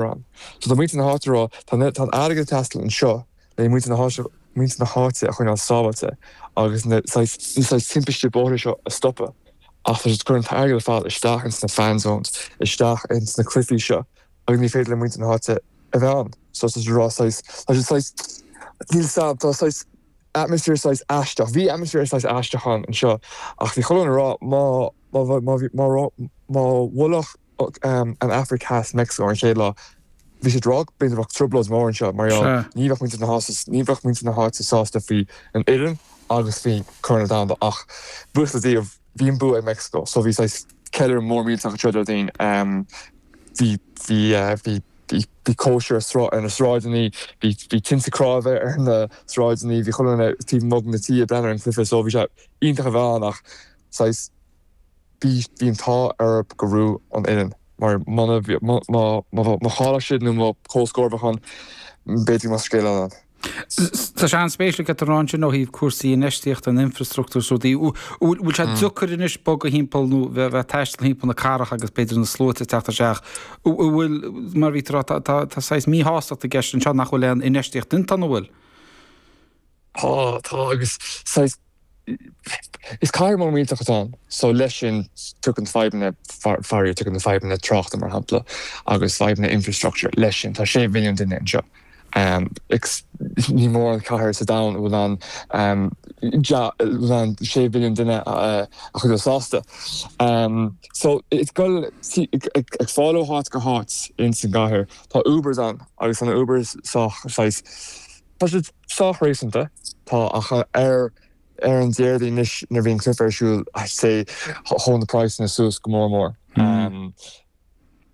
Ron. So tá muintir na háite ag rá, tá an airgead ag teastáil anseo le muintir na háite a choinneáil sábháilte agus na saghas timpistí bóithre seo a stopadh ach tá siad ag cur an t-airgead ar fad isteach ins na fan zones, isteach ins na cluichí seo agus ní féidir le muintir na háite a bheith ann. So tá siad ag rá saghas, tá siad saghas, níl a fhios agam, tá saghas atmosphere saghas aisteach, bhí atmosphere saghas aisteach ann anseo ach bhí chuile dhuine ag rá má, má, má, má, má, má bhuailfeadh, an Afraic Theas, Meicsiceo, ar an chéad lá. Bhí drogall go mbeadh trioblóid mhór anseo mar gheall ní bheadh muintir na háite sásta faoi an fhoireann agus faoi gCorn Domhanda ach buíochas le Dia bhí an bua ag Meicsiceo so bhí saghas ceiliúradh mór millteach tráthnóna Déardaoin. Bhí cóisir ar na sráideanna, bhí tinte cnámha ar na sráideanna, bhí chuile dhuine taobh amuigh na tithe ag breathnú ar an chluiche so bhí sé iontach a bheith ann ach saghas Bhí an t-ádh orm gur bhuaigh an fhoireann, mar má chaill siad nó má comhscór a bhí ann, b'fhéidir go mbeadh scéal eile ann. Tá sé an-spéisiúil a deir tú ansin ó thaobh cúrsaí infheistíochta an infreastruchtúr is rudaí. Bhfuil sé deacair anois bogadh thimpeall nó a bheith ag taisteal thimpeall na cathrach agus b'fhéidir na sluaite ag teacht isteach? Bhfuil, mar a bhí tú ag rá, tá saghas míshástacht i gceist anseo nach bhfuil aon infheistíocht déanta, an bhfuil? Tá, tá, agus saghas, is cathair mór millteach atá ann, so leis sin tugann fadhbanna faraoir, tugann fadhbanna tráchta, mar shampla, agus fadhbanna infrastructure leis sin. Tá sé mhilliún duine anseo, agus níl mórán cathair sa domhan a bhfuil ann, yeah, a bhfuil ann sé mhilliún duine a chuideodh sásta. So, is doiligh, saghas ag fáil ó háit go háit ins an gcathair. Tá Ubers ann, agus tá na Ubers sách, saghas, Tá siad sách réasúnta. Tá ach ar an Déardaoin anois nuair a bhí an cluiche ar siúl, sea, chuaigh na praghsanna suas go mór mór.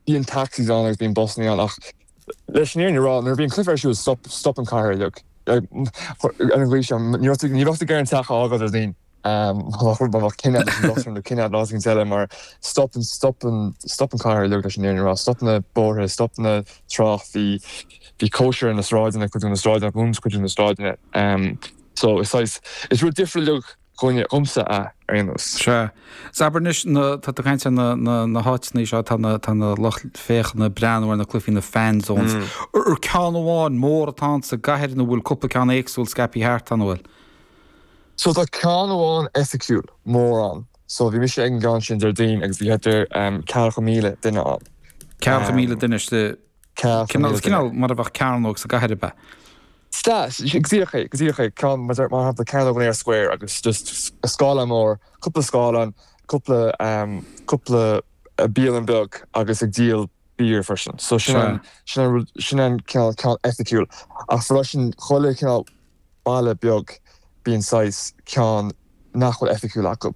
Bíonn taxis ann agus bíonn busanna ann ach leis an fhírinne a rá, nuair a bhí an cluiche ar siúl, stop, stop an chathair uilig. Agus saghas, ní bheadh tú ag iarraidh an teach a fhágáil ar an. Má bheadh cinneadh leis an dochtúir nó cinneadh náisiúnta eile mar stop stop an chathair uilig leis an fhírinne a rá, stop na bóithre, stop an trácht, bhí cóisir ar na sráideanna, cuid de na sráideanna, dhún cuid de na sráideanna. So is saghas, is rud difriúil uilig é dhomsa a, ar aon nós. Sea. Is abair anois, na, tá tú ag caint ar na, na háiteanna seo, tá na, tá na lucht féachana ag breathnú ar na cluichí, na fan zones. Ar ceann amháin mór atá ann sa gcathair nó an bhfuil cúpla ceann éagsúil scaipthe thart, tá, an bhfuil? So tá ceann amháin oifigiúil, mór ann, so bhí mise ag an gceann sin Déardaoin agus bhí thart ar ceathracha míle duine ann. Ceathracha míle duine is cineál mar a bheadh cearnóg sa gcathair, ab ea? Sea, go díreach é, go díreach é, ceann, mar shampla, Cearnóg, Eyre Square, agus just scáileán mór, cúpla scáileán, cúpla, cúpla bialann beag agus ag díol beer freisin, so sin an, sin an, sin an cineál ceann oifigiúil ach freisin chuile chineál, baile beag bíonn saghas ceann nach bhfuil oifigiúil acu,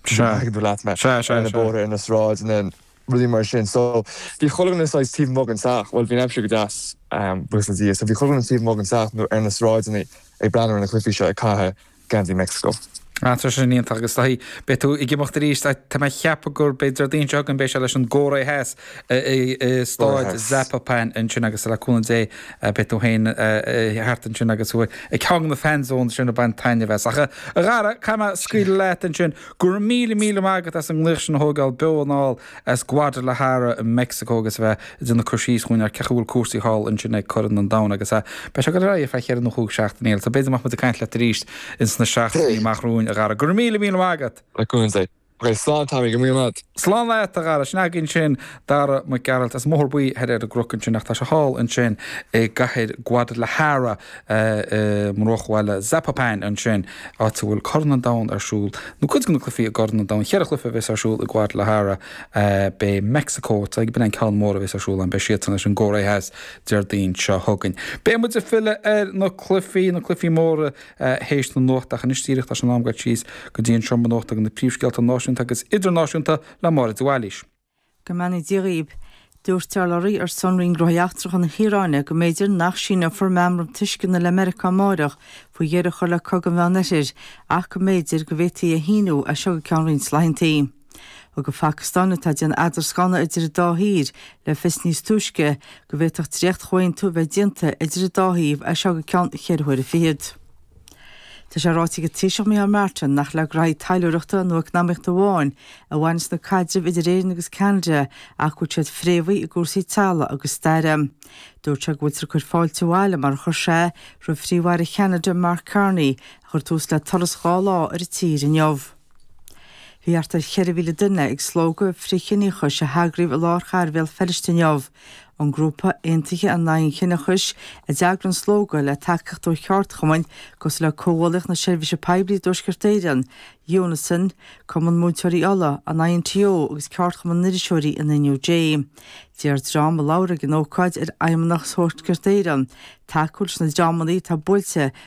Sea. an dtuigeann tú leat mé, Sea, sea, ar na sea. bóithre, ar na sráideanna, rudaí mar sin. So, bhí chuile dhuine saghas taobh amuigh den teach, bhuel, bhí an aimsir go deas, buíochas le Dia, so bhí chuile dhuine taobh amuigh den teach nó ar na sráideanna ag breathnú ar na cluifí seo, ag caitheamh geansaí Meicsiceo. Ah, tá sin iontach agus is dóichí, beidh siad ag imirt arís, tá, tá mé ag ceapadh gurb é Déardaoin seo chugainn, beidh sé leis an gCóiré Theas i, i, i Staid Zapopan ansin agus le cúnamh Dé, Beidh tú féin thart ansin agus thú ag ceann de na fanzones sin ag baint taitneamh as. Ach, a Dhara, caithfidh mé scaoileadh leat ansin. Go raibh míle míle maith agat as an nglaoch sin a thógáil beo anall as Guadalajara i Meicsiceo agus a bheith ag déanamh cur síos dhúinn ar cén chaoi a bhfuil cúrsaí thall ansin ag Corn an Domhain agus a beidh sé ag dul ar aghaidh ar feadh cheithre nó chúig seachtaine eile. So b'fhéidir go mbeadh muid ag caint leat arís ins na seachtainí amach romhainn, a Dhara. Go raibh míle míle maith agat! Go raibh míle maith agat! Ok, slán Tommy, go raibh maith agat. Slán leat, a Dhara. Sin againn sin Dara Mac Gearailt as an mBóthar Buí thoir ar an gCnoc ansin ach tá sé thall ansin i gcathair Guadalajara i mbruachbhaile Zapopan ansin, áit a bhfuil Corn an Domhain ar siúl, nó cuid de na cluichí i gCorn an Domhain. Cheithre chluiche a bheas ar siúl i Guadalajara. Beidh Meicsiceo, dar ndóigh an ceann mór a bheas ar siúl ann, beidh siadsan leis an gCóiré Theas Déardaoin seo chugainn. Beidh muid ag filleadh ar na cluichí, na cluichí móra, théis na nuachta ach anois díreach tá sé in am goil síos go dtí an seomra nuachta ag na príomhscéalta náisiúnta agus idirnáisiúnta le Máire de Bhailís. Go mbeannaí Dia dhaoib. Dúirt urlabhraí ar son Roinn Gnóthaí Eachtracha na hIaráine go mb'fhéidir nach síneofar meamram tuisceana le Meiriceá amáireach faoi dheireadh a chur le Cogadh an Mheánoirthir ach go mb'fhéidir go bhféadfaí é a shíniú as seo go ceann roinnt laethanta. Thug an Phacastáin, atá ag déanamh eadrascáin idir an dá thír, le fios níos túisce go bhféadfadh dréachtchomhaontú a bheith déanta idir an dá thaobh as seo go ceann cheithre huaire fichead. Tá sé ráite ag an Taoiseach Micheál Martin nach le graithí taidhleoireachta nó eacnamaíochta amháin a bhaineas na caidrimh idir Éirinn agus Ceanada ach go bhfuil siad fréamhaithe i gcúrsaí teaghlaigh agus staire. Dúirt sé go bhfuiltear ag cur fáilte abhaile mar a chuir sé roimh Phríomh-Aire Cheanada Mark Carney a chuir tús le turas dhá lá ar an tír inniu. Bhí thart ar cheithre mhíle duine ag slógadh frith-chiníochais a heagraíodh i lár chathair Bhéal Feirste inniu. An grúpa, Aontaithe in Aghaidh an Chiníochais, a d'eagraigh an slógadh, le tacaíocht ó cheardchumainn cosúil le Comhghuaillíocht na Seirbhíse Poiblí i dTuaisceart Éireann, Unison, Cumann Múinteoirí Uladh, an INTO agus Ceardchumann na nIriseoirí an NUJ. D'iarr dream a labhair ag an ócáid ar Fheidhmeannacht Thuaisceart Éireann tacú leis na dreamanna atá buailte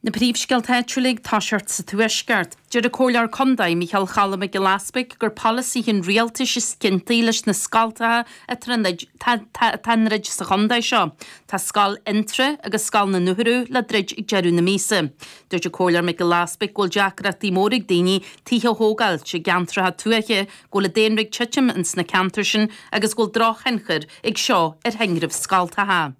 Na príomhscéalta áitiúla ag toiseacht sa Tuaisceart. Deir an Comhairleoir Contae, Micheál Choilm Mac Giolla Easbuig gur polasaithe an rialtais is ciontaí leis na scoltacha atá á ndruid sa chontae seo. Tá scoil Fhionntrá agus scoil na nUrthu le druid ag deireadh na míosa. Dúirt an Comhairleoir Mac Giolla Easbuig go bhfuil deacrachtaí móra ag daoine tithe a thógáil i gceantracha tuaithe, go bhfuil an daonra ag titim ins na ceantair sin agus go bhfuil drochthionchar ag seo ar thinreamh scoltacha.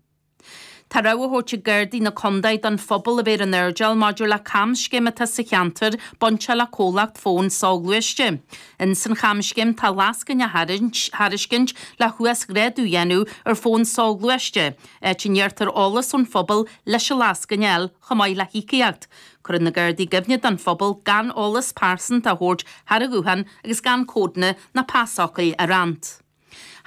Tá rabhadh á thabhairt ag Gardaí na Condae don phobal a bheith ar an airdeall maidir le camscéim atá sa cheantar bainte le comhlacht fóin soghluaiste. In san chamscéim tá lascaine á thairiscint le huasghrádú a dhéanamh ar fón soghluaiste, áit a n-iarrtar eolas ón phobal leis an lascaine a fháil chomh maith le híocaíocht. Cuireann na Gardaí i gcuimhne don phobal gan eolas pearsanta a thabhairt thar an ghuthán agus gan códanna ná pasfhocail a roinnt.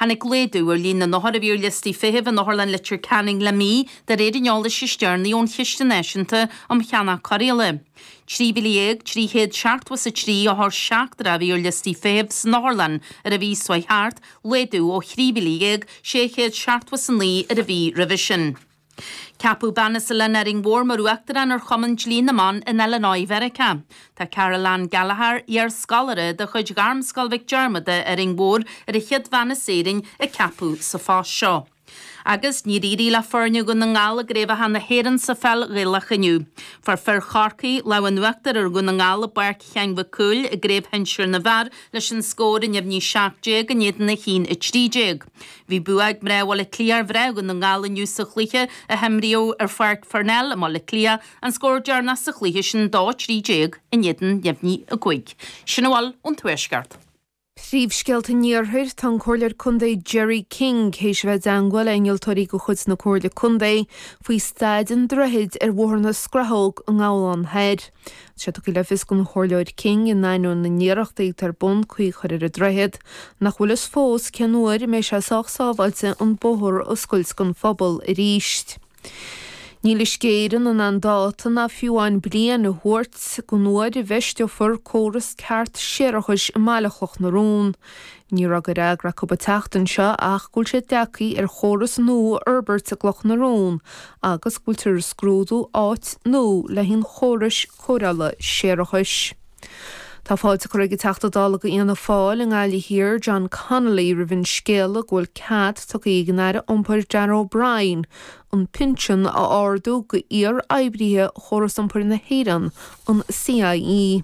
Tháinig laghdú ar líon na n-othar a bhí ar liostaí feithimh in Otharlann Leitir Ceanainn le mí, de réir an eolais is deireanaí ón Chiste Náisiúnta um Cheannach Cóireála. 13,300 seachtó is a trí othar seachtrach a bhí ar liostaí feithimh san otharlann ar an mhí seo thart, laghdú ó thrí mhíle dhéag, sé chéad seachtó is a naoi ar an mhí roimhe sin. Ceapadh bean as oileán Árainn Mhór mar Uachtarán ar Chumann Dlí na mBan in Illinois, Mheiriceá. Tá Caroleann Gallagher, iar-scoláire de chuid Ghairmscoil Mhic Diarmada Árainn Mhór ar an chéad bhean as Éirinn a ceapadh sa phost seo. Agus níor éirigh le foirne Dhún na nGall i gCraobhacha na hÉireann sa pheil Ghaelach inniu. Fuair fir Chorcaí lámh an uachtair ar Dhún na nGall i bPáirc Sheáin Mhic Cumhaill i gCraobh Shinsir na bhFear leis an scór neamhní 17 in éadan 1-13. Bhí bua ag mná Bhaile Átha Cliath ar mhná Dhún na nGall inniu sa chluiche a himríodh ar Pháirc Pharnell i mBaile Átha Cliath, an scór deireanach sa chluiche sin dó 13 in éadan neamhní 5. Sin a bhfuil ón Tuaisceart. Príomhscéalta an Iarthair Tá an Comhairleoir Contae Gerry King théis a bheith i dteangmháil le innealtóirí de chuid na Comhairle Contae faoi staid an droichid ar Bhóthar na Scrathóg i nGabhlán Thoir. Sé tugtha le fios don Chomhairleoir King, in ainneoin na n-iarrachtaí atá ar bun caoi a chur ar an droichead, nach bhfuil fhios fós cén uair a mbeidh sé sách sábháilte an bóthar a oscailt don phobal arís. Níl Uisce Éireann in ann dáta ná fiú amháin bliain a thabhairt don uair a bhfeisteofar córas ceart séarachais i mBaile Chloch na Rón. Ní raibh de fhreagra acu an tseachtain seo ach go bhfuil siad ag dearcadh ar chóras nua a fhorbairt i gCloch na Rón agus go bhfuiltear ag scrúdú áit nua le haghaidh an chórais cóireála séarachais. Tá fáilte curtha ag an Teachta Dála de Fhianna Fáil i nGaillimh Thiar, John Connolly roimh an scéala go bhfuil cead tugtha ag an Aire Iompair Darragh O'Brien an pinsean a ardú d'iar-oibrithe Chóras Iompair na hÉireann, an CIE.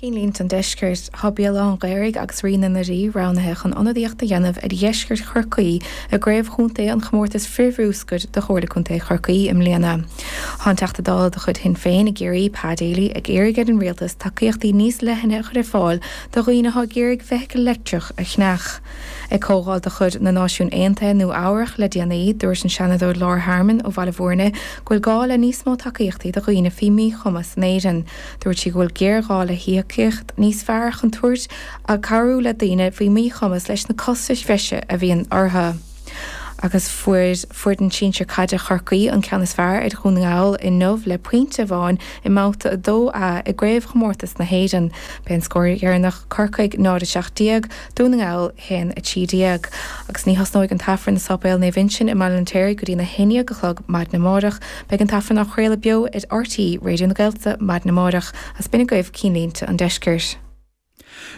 Cinnlínte an Deiscirt, tá Béal Átha an Ghaorthaidh agus Réidh na nDoirí roghnaithe chun ionadaíocht a dhéanamh ar dheisceart Chorcaí i gcraobh chontae an chomórtais frithbhruscair do Chomhairle Contae Chorcaí i mbliana. Tá an Teachta Dála de chuid Shinn Féin i gCiarraí, Pa Daly, ag iarraidh ar an Rialtas tacaíochtaí níos leithne a chur ar fáil do dhaoine atá ag iarraidh feithicil leictreach a cheannach. Ag comhdháil de chuid na Náisiún Aontaithe i Nua Eabhrach le déanaí, dúirt an Seanadóir Laura Harmon ó Bhaile Bhúirne go bhfuil gá le níos mó tacaíochtaí do dhaoine faoi mhíchumas in Éirinn. Dúirt sí go bhfuil géarghá le híocaíocht níos fearr chun tabhairt ag cabhrú le daoine faoi mhíchumas leis na costais bhreise a bhíonn orthu. Agus fuair foireann sinsir caide Chorcaí an ceann is fearr ar Dhún na nGall inniu le pointe amháin i mBabhta 2A i gCraobhchomórtas na hÉireann. B'é an scór deireanach Corcaigh 0, 17, Dún na nGall haon a trí déag, agus ní thosnóidh an tAifreann i Sáipéal Naomh Uinseann i mBaile an Fheirtéaraigh go dtí na haon déag a chlog maidin amáireach. Beidh an tAifreann á chraoladh beo ar RTÉ Raidió na Gaeltachta maidin amáireach is b'in agaibh Cinnlínte an Deiscirt.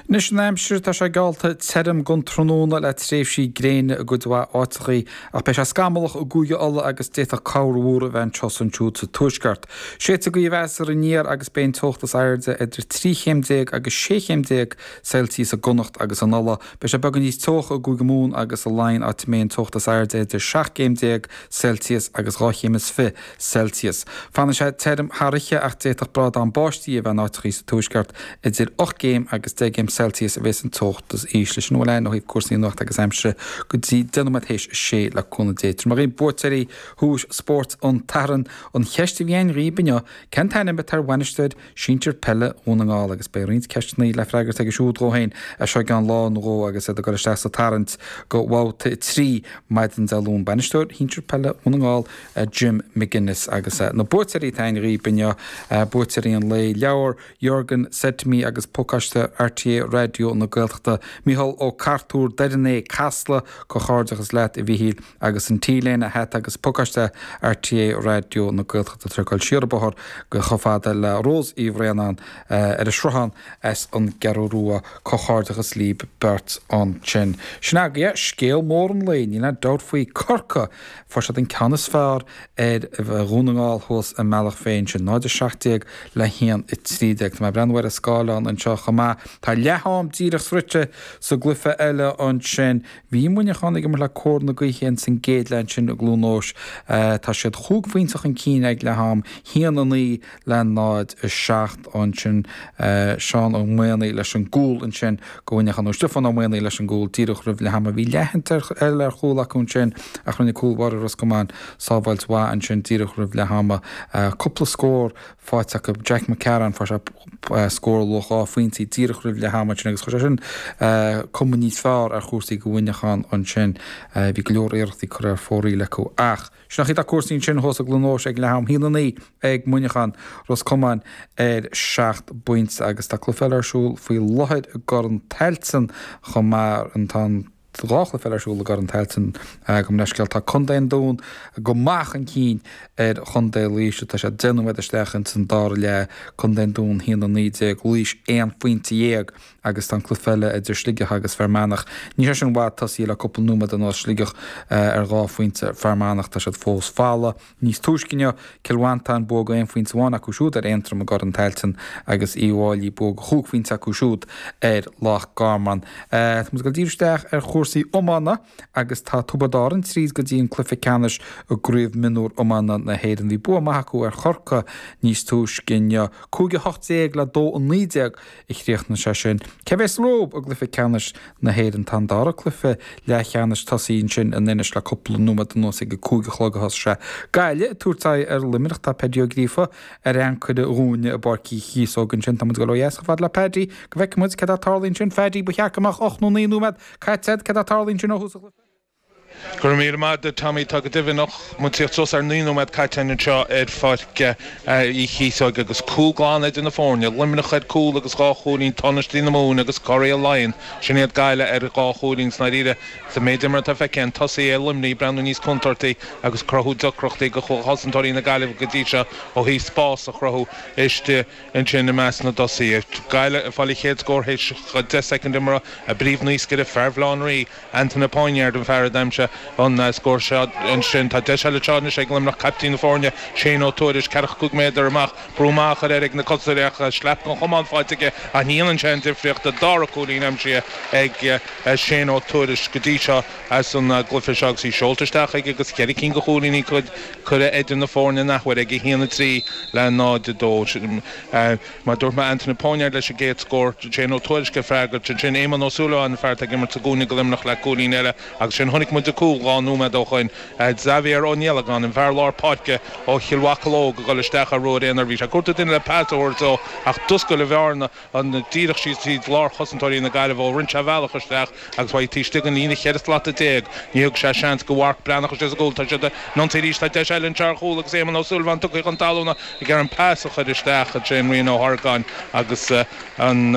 Anois an aimsir, tá sé geallta tirim don tráthnóna le tréimhsí gréine i gcuid mhaith áiteachaí, ach beidh sé scamallach i gCúige Uladh agus d'fhéadfadh corrmhúr a bheith anseo is ansiúd sa tuaisceart. Séideogaí a bheas ar an aer agus beidh an teocht is airde idir trí chéim déag agus sé chéim déag Celsius i gConnacht agus in Uladh. Beidh sé beagán níos teocha i gCúige Mumhan agus i Laighin áit a mbeidh an teocht is airde idir seacht gcéim déag Celsius agus dhá chéim is fiche Celsius. Fanfaidh sé tirim thar oíche ach d'fhéadfadh brádán báistí a bheith in áiteachaí sa tuaisceart. Idir ocht gcéim agus deich gcéim Celsius a bhéas an teocht is ísle. Sin a bhfuil ann ó thaobh cúrsaí nuachta agus aimsire go dtí deich nóiméad théis a sé le cúnamh Dé. Tabharfaidh mé dhaoibh buaiteoirí Dhuais Spóirt an tSathairn. An cheist a bhí againn dhaoibh inniu, cén t-ainm atá ar bhainisteoir. sinsir peile Dhún na nGall agus beidh roinnt ceisteanna le freagairt aige siúd dhó féin as seo i gceann lá nó dhó agus iad á gcur isteach sa tarraingt go bhabhta a trí maidin Dé Luain. Bainisteoir shinsir peile Dhún na nGall, Jim McGuinness agus na buaiteoirí atá againn dhaoibh inniu, buaiteoirí an lae, leabhar Jürgen Said to Me agus pacáiste RTÉ Raidió na Gaeltachta, Micheál Ó Cartúir, Doire an Fhéich, Casla, comhghairdeachas leat a Mhichíl. agus an T-léine an hata agus pacáiste RTÉ Raidió na Gaeltachta tar éis dul siar an bóthar go chomh fada le Ros Uí Bhraonáin ar an Sruthán as an gCeathrú Rua. Comhghairdeachas líb beirt ansin. Sin agaibh scéal mór an lae. Níl aon dabht faoi, Corcaigh! Fuair siad an ceann is fearr ar Dhún na nGall thuas i mBealach Féich, sin 0, 17 le 1, 13. Tá mé ag breathnú ar an scáileán anseo chomh maith, tá leath-am díreach sroichte sa gcluiche eile ansin, Bhí Muineachán ag imirt le cóir na gaoithe ins an gcéad leath ansin i gCluain Eois. Tá siad chúig phointe chun cinn ag leath-am, haon a naoi le náid a seacht ansin. Seán Ó Maonaigh leis an gcúl ansin go Mhuineachán, nó Stiofán Ó Maonaigh leis an gcúl díreach roimh leath-am. a bhí leathsheans eile ar chúl acu ansin ach rinne cúl báire Ros Comáin sábháilt mhaith ansin díreach roimh leath-am. Cúpla scór faighte acu. Jack Mac Cearáin, fuair sé scór ar luach dhá phointí díreach roimh leath ama ansin agus chuir sé sin cuma níos fearr ar chúrsaí do Mhuineachán ansin. Bhí go leor iarrachtaí curtha ar fóraoil acu ach sin mar atá cúrsaí ansin, cothrom ar aon nós ag leath am, a haon a naoi ag Muineachán, Ros Comáin ar seacht bpointe agus tá cluiche eile ar siúl faoi láthair i gCorn Tailteann chomh maith, an t-am. Tá dhá chluiche eile ar siúl i gCorn Tailteann gabh mo leithscéal, tá Contae an Dún go maith chun cinn ar Chontae Laoise, tá siad deich nóiméad isteach ins an dara leath, Contae an Dún 1-19, Laois aon phointe dhéag agus tá an cluiche eile idir Sligeach agus Fear Manach, níl sé sin i bhfad tosaithe le cúpla nóiméad anuas, Sligeach ar dhá phointe, Fear Manach tá siad fós folamh. Níos túisce inniu, Cill Mhantáin bua aon phointe amháin acu siúd ar Aontroim i gCorn Tailteann agus Uíbh Fháilí bua chúig phointe acu siúd ar Loch Garman. Tá muid ag dul díreach isteach ar chúrsaí iomána agus tá Tiobraid Árann tríd go dtí an cluiche ceannais i gCraobh Mionúr Iomána na hÉireann. Bhí bua maith acu ar Chorcaigh níos túisce inniu, 5-18 le 2-19 a chríochnaigh sé sin. Cé bhéas rompu i gcluiche ceannais na hÉireann? Tá an dara cluiche leathcheannais tosaithe ansin in Inis le cúpla nóiméad anuas, ag a cúig a chlog a thosaigh sé. Gaillimh ag tabhairt aghaidh ar Luimneach, tá Páidí Ó Gríofa ar ancaire dhúinne i bPáirc Uí Chíosóg ansin. Tá muid ag gabháil ó dheas chomh fada le Páidí, go bhfeicfidh muid cad é atá ag tarlú ansin. Pháidí, ba cheart go mbeadh ocht nó naoi nóiméad caite agat, cad é atá ag tarlú ansin ó thús an chluiche? Go raibh míle maith duit Tommy, tá go deimhin ocht, beagnach suas ar naoi nóiméad caite againn anseo ar Pháirc Uí Chíosóig agus cúl glan idir na foirne, Luimneach ar cúl agus dhá chúilín tánaistí na Mumhan agus curaidh Laighean, sin iad Gaillimh ar dhá chúilín is i ndáiríre sa méid imeartha atá feicthe againn tosaithe Luimnigh ag breathnú níos contúirtí agus ag cruthú deacrachtaí do chosantóirí na Gaillimhe go dtí seo ó thaobh spás a chruthú istigh ansin i measc na dtosaithe. Gaillimh ag fáil an chéad scór théis deich soicind imeartha, a bpríomhnaoscaire, fear Bhaile Locha Riach, Antaine Poinéard an fear a d'aimsigh an scór seo ansin. Tá deis eile anseo anois ag Luimneach caiptín na foirne, Shay Ó Tuairisg, ceathracha cúig méadar amach, brú maith a chur air ag na cosantóirí ach slap an chumáin fáighte aige a dhéanann sé an difríocht. An dara cúilín aimsithe ag Shay Ó Tuairisg go dtí seo as an gcluiche seo agus í seolta isteach aige agus ceithre cinn de chúilíní curtha idir na foirne in athuair aige, 1:03 le 0:02. Mar dúirt mé, Antaine Poinéard leis an gcéad scór. Shay Ó Tuairisg ag freagairt. Ansin Éamonn Ó Súilleabháin, an fear atá ag imirt sa gcúinne do Luimneach le cúilín eile. Agus ansin chonaic muid an cúl dhá nóiméad ó shoin. Xavier Ó Niallagáin, an fear lár páirce ó Chill Mocheallóg, ag dhul isteach ar ruathar aonair. Bhí sé ag cuartú duine le pas a thabhairt dó ach d'oscail an bhearna díreach síos tríd lár chosantóirí na Gaillimhe rinne sé a bhealach isteach. Agus chuaigh taobh istigh den líne cheithre slata déag, níor thug sé seans do Mharc Breathnach istigh sa gcúl. Tá siad ag ionsaí arís, tá deis eile anseo ar chúl agus Éamonn Ó Súilleabháin tugtha chun talúna ag ar an pas a chuir isteach Shane Ryan Ó hArgáin agus an